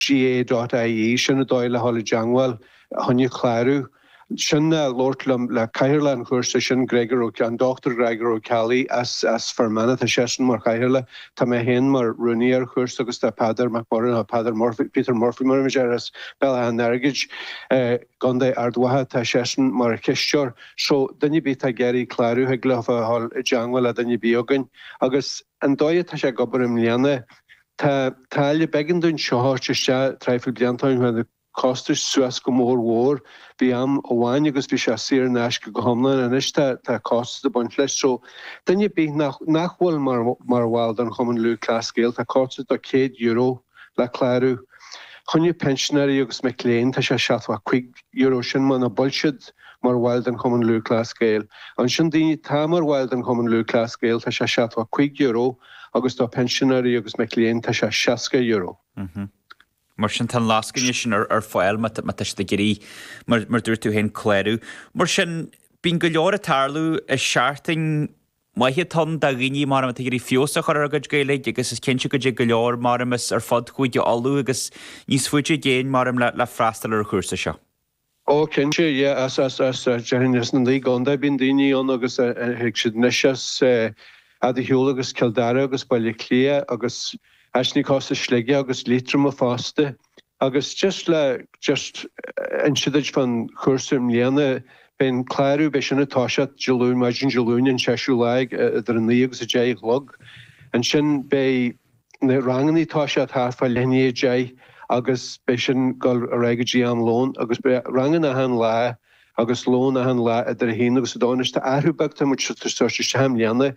GAA.IE Sin an dóigh le dhul i dteangmháil choinne clárú. Sin nó labhairt le cathaoirleach an chúrsa sin, Gregor Ó, an Dr Greagor Ó Ceallaigh as, as Fear Manach. Tá seisean mar chathaoirleach, tá mé féin mar rúnaí ar an chúrsa agus tá Peadar Mac Murchaidh, nó Peadar Murphy, Peter Murphy mar a bhíonn sé air, as Béal Átha an Airgid i gContae Ard Mhacha, tá seisean mar chisteoir. So, duine ar bith atá ag iarraidh clárú thig leofa a dhul i dteangmháil le duine ar bith againn. Agus an dóigh atá sé ag obair i mbliana, Tá táille b'éigean dúinn seo a thabhairt isteach traidhfil blianta ó shin, chuaigh na costais suas go mór mhór. Bhí am amháin agus bhí sé saor in aisce go hiomlán, anois tá tá costas ag baint leis. So duine ar bith nach nach bhfuil mar mar bhall den Chumann Lúthchleas Gael, tá costas de chéad euro le clárú. Choinne pinsinéirí agus mic léinn tá sé seachtó cúig euro, sin muna bhfuil siad mar bhaill den Chumann Lúthchleas Gael. Ansin daoine atá mar bhaill den Chumann Lúthchleas Gael tá sé seachtó cúig euro. agus do phinsinéirí agus mic léinn tá sé €60. Mar sin tá an lascaine sin ar fáil má tá sibh ag iarraidh, mar dúirt tú féin, clárú. Mar sin bíonn go leor ag tarlú is seachtain mhaith atá ann do dhaoine mar atá ag iarraidh feabhas a chur ar a gcuid Gaeilge agus is cinnte go dtig go leor mar as ar fud Chúige Uladh agus níos faide i gcéin mar le freastal ar an chúrsa seo. Ó cinnte, yeah, as, as, as, déarfainn as na naoi gcontae bíonn daoine ann agus thig siad anois as fhad ar shiúl agus Cill Dara agus Baile Átha Cliath agus as, aníos as Sligeach agus Liatroim fosta agus just le, just inse duit fán chúrsa i mbliana beidh an clárú, beidh sin ag toiseacht Dé Luain, maidin Dé Luain an seisiú lá ag idir a naoi agus a deich a chlog ansin beidh. na rangannaí ag toiseacht ag leath i ndiaidh a 10 agus beidh sin ag dul ar aghaidh go dtí am lón agus beidh ranganna achan lá agus lón achan lá idir a haon agus a dó. Anois tá athrú beag atá muid ag tabhairt isteach i mbliana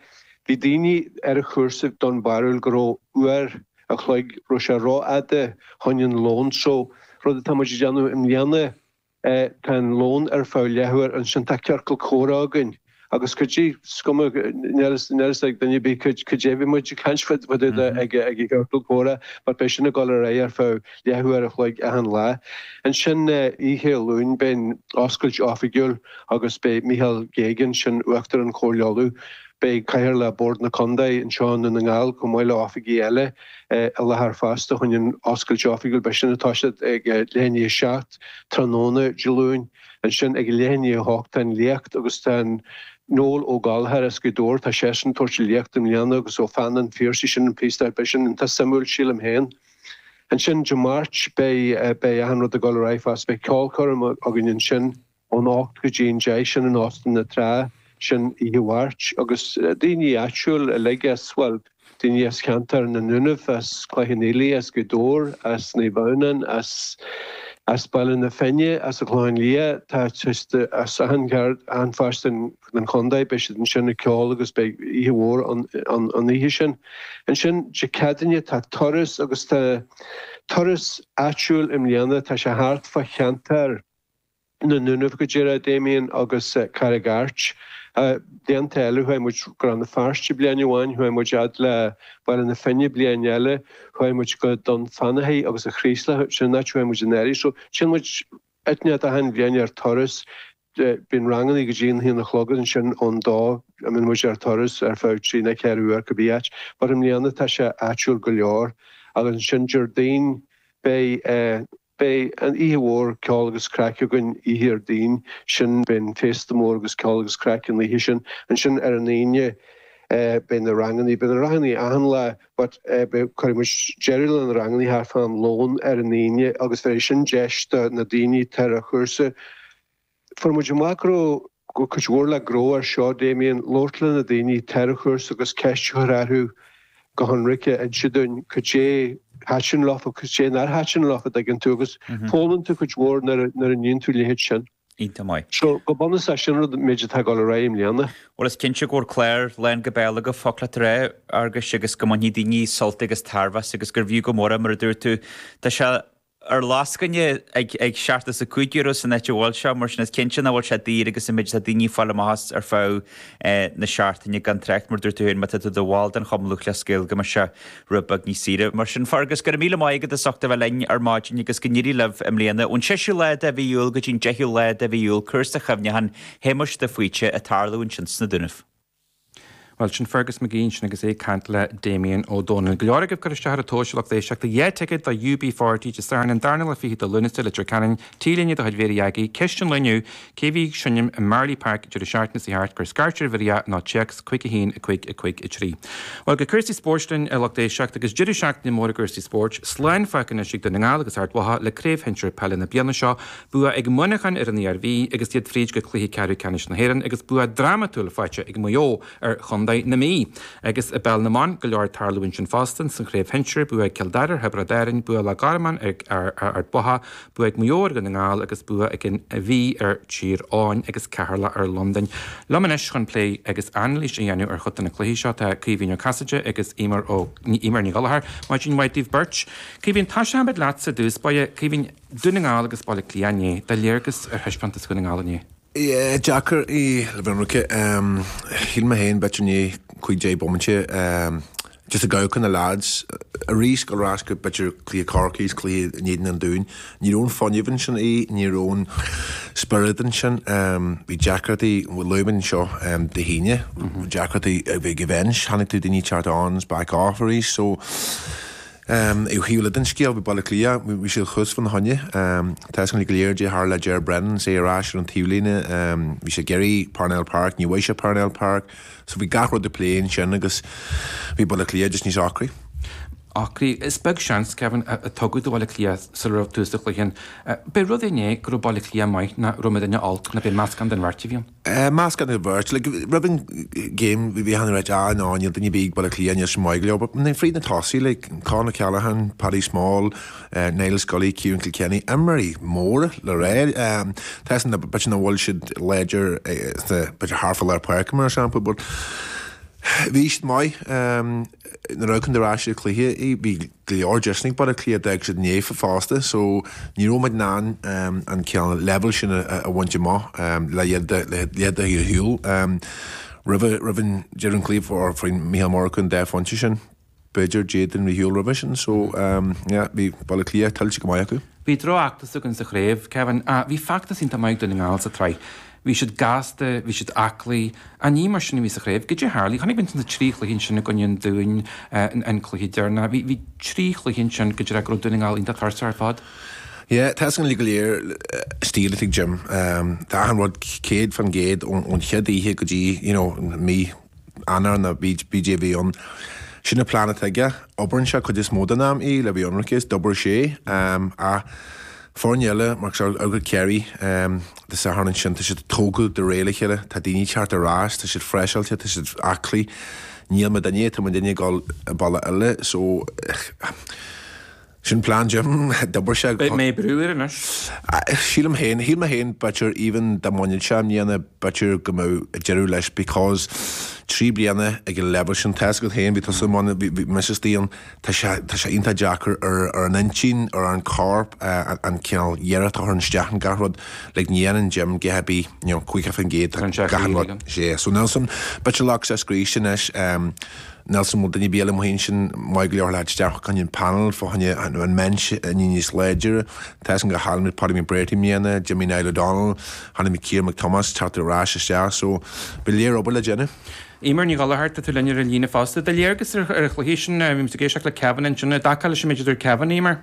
bhí daoine ar an chúrsa den bharúil go raibh uair a chloig raibh sé ró fhada choinne an lón so rud atá muid ag déanamh i mbliana Tá an lón ar feadh leath uair ansin tá ciorcal comhrá againn agus cuid díobh is cuma níl a fhios níl a fhios ag duine ar bith caidé caidé a bhí muid ag caint fá dtaobh de ag ag an gciorcal comhrá but beidh sin ag dul ar aghaidh ar feadh leath uair a chloig achan lá. Ansin oíche Luain beidh an oscailt oifigiúil agus beidh Micheál Geoghegan, sin Uachtarán Chomhairle Uladh, beidh Cathaoirleach Bhord na Contae anseo i nDún na nGall chomh maith le oifigigh eile i láthair fosta choinne an oscailt oifigiúil beidh sin ag toiseacht ag leath i ndiaidh a 7. tráthnóna Dé Luain. Ansin ag a leath i ndiaidh a hocht tá an léacht agus tá Noel Ó Gallchóir as Gaoth Dobhair, tá seisean ag tabhairt an léacht i mbliana agus Ó Pheann an Phiarsaigh, sin an píosa, beidh sin iontach suimiúil sílim féin. Ansin Dé Máirt beidh, beidh achan rud ag dul ar aghaidh fosta, beidh ceolchoirm againn ansin ón a hocht go dtí an deich, sin in Óstán na Trá, sin oíche Mháirt agus daoine áitiúil uilig as, bhuel, daoine as ceantar na nDúnaibh, as Cloich Cheann Fhaola, as Gaoth Dobhair, as Naomh Adhamhnáin, as Baile na Finne, as an Chlochán Liath, tá siad as achan chearn, achan pháirt den chondae, beidh siad ansin ag ceol agus beidh oíche mhór ann an oíche sin. Ansin Dé Céadaoine tá turas agus tá turas áitiúil i mbliana, tá sé thart fá cheantar, na nDúnaibh go díreach Damien agus Carraig Airt. Blianta eile chuaigh muid go Rann na Feirste bliain amháin, chuaigh muid fhad le Baile na Finne bliain eile, chuaigh muid go Dún Fanathaidh agus an Chraoslaigh, sin an áit a chuaigh muid anuraidh. So téann muid áit éigin achan bhliain ar turas, bíonn rangannaí go dtí an haon a chlog agus ansin ón dó a mbíonn muid ar turas ar feadh trí ná ceithre uair cibé áit. But i mbliana tá sé áitiúil go leor agus ansin Déardaoin beidh eh, Beidh an oíche mhór ceol agus craic againn oíche Dhéardaoin sin, beidh an féasta mór agus ceol agus craic an oíche sin. Ansin ar an Aoine beidh na rangannaí, beidh na rangannaí achan lá but cuirfidh muid deireadh le na rangannaí thar fán lón ar an Aoine agus bhéarfaidh sin deis do na daoine atá ar an chúrsa, Fuair muid amach go raibh cuid mhór le gnóthú air seo, Damien, labhairt le na daoine, atá ar an chúrsa agus ceist a chur orthu go hionraic, a inse dúinn cad é thaitin leofa agus cad é nár thaitin leofa, a dtuigeann tú, agus foghlaimíonn tú cuid mhór nuair a níonn tú leithéid sin. Iontach maith. So, go bunúsach sin agat an méid atá ag dul ar aghaidh i mbliana. Bhuel is cinnte go bhfuil clár lán go béal agaibh faoi láthair Fheargais agus go mbainfidh daoine sult agus tairbhe as agus gurbh fhiú go mór é mar a dúirt tú. Tá sé ar lascaine ag seachtó is a cúig euro san áit a bhfuil sé, mar sin is cinnte nach bhfuil sé daor agus an méid atá daoine ag fáil amach as ar feadh na seachtaine, gan trácht, mar dúirt tú féin, má tá tú i do bhall den Chumann Lúthchleas Gael go mbeidh sé rud beag níos saoire. Mar sin, Fergus, go raibh míle maith agat as ucht a bheith linn ar maidin agus go n-éirí libh i mbliana. Ón séú lá de mhí Iúil go dtí an deichiú lá de mhí Iúil cúrsa cuimhneacháin Shéamuis de Faoite ag tarlú ansin sna Dúnaibh. Bhuel, sin Fergus McGee sin agus é ag caint le Damien Ó Dónaill. Go leor agaibh ag cur isteach ar an duais a lucht éisteachta dhá thicéad do UB40 Dé Sathairn an darna lá fichead de Lúnasa, Leitir Ceanainn, T-Léine de chuid Mhéara Dhaidí, Ceist an lae inniu, Cé a bhí ag seinm i Marlay Park deireadh seachtaine seo thart cuir scairt ar Bhrídanna ná Téacs, Cuig a haon, a cúig, a cúig a trí. Bhuel, go cúrsaí spóirt linn, a lucht éisteachta, agus deireadh seachtaine mór i gcúrsaí spóirt. Slán fágtha anois ag Dún na nGall agus Ard Mhacha le craobh shinsir peile na bliana seo Bua ag Muineachán ar an Iarmhí agus iad fríd go Cluiche Ceathrú Ceannais na hÉireann agus bua drámatúil faighte ag Maigh Eo ar Chontae na Mí. Agus i bPeil na mBan, go leor ag tarlú ansin fosta. Sa Chraobh Shinsir, bua ag Cill Dara ar Thiobraid Árainn, bua ag Loch Garman ar Ard Mhacha, bua ag Maigh Eo ar Dhún na nGall agus bua ag an Mhí ar Thír Eoghain agus Ceatharlach ar Londain. Liom anois chun plé agus anailís a dhéanamh ar chuid de na cluichí seo tá Caoimhín Ó Casaide agus Emer Ní Ghallchóir. Maidin mhaith daoibh beirt. Caoimhín, tosóidh muid leatsa i dtús báire. Caoimhín. Dún na nGall agus Baile Átha Cliath inné, do léargas ar thaispeántas Dhún na nGall inné. Yeah deacair é le bheith ionraice. Shíl mé féin b'fhéidir i ndiaidh cúig deich bomainte just ag amharc ar na leaids arís gabháil ar ais b'fhéidir cluiche Chorcaí cluiche in éadan an Dúin. Ní raibh an fuinneamh ansin ní raibh an spiorad ansin. Bhí deacrachtaí luaigh mé seo Dé hAoine deacrachtaí ag an bhinse chonaic tú daoine teacht ann is back off arís so Ó thaobh eile den scéal bhí Baile Átha Cliath, bhí siad thuas fána choinne. Tá a fhios againn go léir goidé a tharla le Ger Brennan agus é ar ais ar an taobh líne. Bhí sé ag iarraidh Parnell Park, ní bhfuair sé Parnell Park. So bhí gach rud ag plé ansin agus bhí Baile Átha Cliath just níos ocraí. Ocraí? Is beag seans, Kevin, a tugadh do Bhaile Átha Cliath sula raibh tús sa chluiche sin. B'é rud é inné go raibh Baile Átha Cliath maith nó raibh muidinne olc nó b'é meascán den bheirt a bhí ann. Meascán den bheirt, roimh an game bhí achan duine ag ráit, níl, níl, níl daoine ar bith ag Baile Átha Cliath níos mó, imithe leo, but fríd na tosaithe, Con O'Callaghan, Paddy Small, Niall Scully, Ciarán Kilkenny, imreoirí móra le rá. Tá 'fhios a'm b'fhéidir nach bhfuil siad láidir sna, b'fhéidir thart fá lár páirce mar shampla, but bhí siad maith ní raibh Con, deireadh sa chluiche, bhí. go leor deiseanna ag Baile Átha Cliath, d'fhág siad ina ndiaidh fosta so ní raibh muid in ann an cineál leibhéal sin a bhaint amach le, yeah, dá, sílim roimh, roimh an deireadh an chluiche fuair Micheál Ó Murchú an dá phointe sin, b'fhéidir d'fhéad an réiteoir séideadh roimhe sin so yeah bhí Baile Átha Cliath tuillte go maith acu. Bhí droch-fheachtas againn sa chraobh, Kevin, ach bhí feachtas iontach maith ag Dún na nGall sa tsraith. Bhí siad gasta, bhí siad aclaí. Ach ní mar sin a bhí sa chraobh. Goidé tharlaigh? Chonaic muid na trí chluiche ansin i gcoinne an Dúin, an cluiche deireanach. Bhí bhí trí chluiche ansin go díreach go raibh Dún na nGall iontach tuirseach ar fad. Yeah, tá a fhios againn uilig go léir an stíl atá ag Jim. Tá achan rud céad fan gcéad ón chéad oíche go dtí, you know, mí. Eanáir nó cibé a bhí ann. Sin an plean atá aige. Oibreann sé cuid is mó den am í le bheith ionraic is d'obair sé ach foirne eile mar shampla Maigh Eo agus Kerry Dé Sathairn ansin tá siad ag tógáil de réir a chéile. Tá daoine teacht ar ais. Tá siad freiseáilte. Tá siad aclaí. Níl muidinne. Tá muidinne ag dul an bealach eile so Sin plean Jim. D'obair sé go. Beidh mé ag brú air anois. Sílim féin, shíl mé féin b'fhéidir even dá mbainfeadh sé i mbliana b'fhéidir go mbeadh deireadh leis because trí bliana ag an leibhéal sin tá 'fhios agat féin bhí tusa i mbun, bhí mise istigh ann, tá sé, tá sé iontach deacair ar an intinn, ar an corp an cineál iarracht a chur isteach in gach rud like ní dhéanann Jim a dhath ar bith you know 50% tá achan rud yeah so níl a fhios agam b'fhéidir nglacfaidh sé scríste anois. Níl a fhios agam an bhfuil duine ar bith eile amuigh ansin maith go leor le tabhairt isteach chun an panel fá choinne an binse a dhéanamh níos láidre. Tá a fhios againn gur chaill muid Paddy McBrearty i mbliana, d'imigh Niall O'Donnell, chonaic muid Ciarán Mac Tomáis teacht ar ais isteach so go leor obair le déanamh. Eimear Ní Ghallchóir, tá tú linn ar an líne fosta. Do léargas ar an chluiche sin, bhí tú ag éisteacht le Kevin, an aontófá leis an méid a dúirt Kevin, Eimear?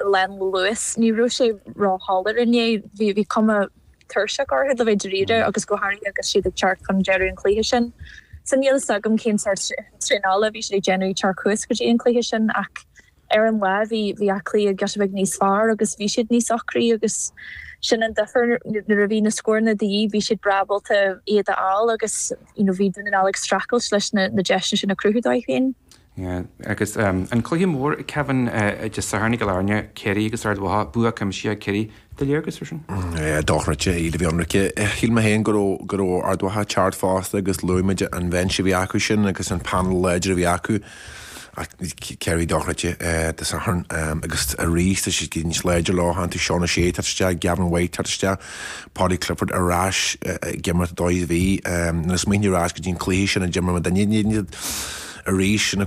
lán luais. Ní raibh sé ró shoiléir inné. Bhí bhí cuma tuirseach orthu le bheith dáiríre agus go háirithe agus siad ag teacht chun deireadh an chluiche sin. So níl fhios agam cén sórt traenála a bhí siad ag déanamh ag teacht suas go dtí an cluiche sin ach ar an lá bhí bhí Áth Cliath giota beag níos fearr agus bhí siad níos ocraí agus sin an difir nuair a bhí na scóranna de dhíth bhí siad breá ábalta iad a fháil agus you know bhí Dún na nGall ag streachailt leis na na deiseanna sin a chruthú dóibh féin. Yeah, agus an cluiche mór Kevin Dé Sathairn i gCill Airne, Ciarraí agus Ard Mhacha, bua cuimsithe ag Ciarraí. Do léargas ar sin? Yeah, dochreidte le bheith ionraic. Shíl mé féin go raibh Ard Mhacha ag teacht fosta agus luaigh muid an bheinse a bhí acu sin agus an panel láidir a bhí acu ach Ciarraí dochreidte Dé Sathairn agus arís tá siad níos láidre leofa, tá tú Seán O'Shea ag teacht isteach, Gavin White ag teacht isteach. Paudie Clifford ar ais ag imirt dóibh. Bhí mé ag smaoineamh ar ais go dtí an cluiche sin a d'imir muid in Inis arís ina.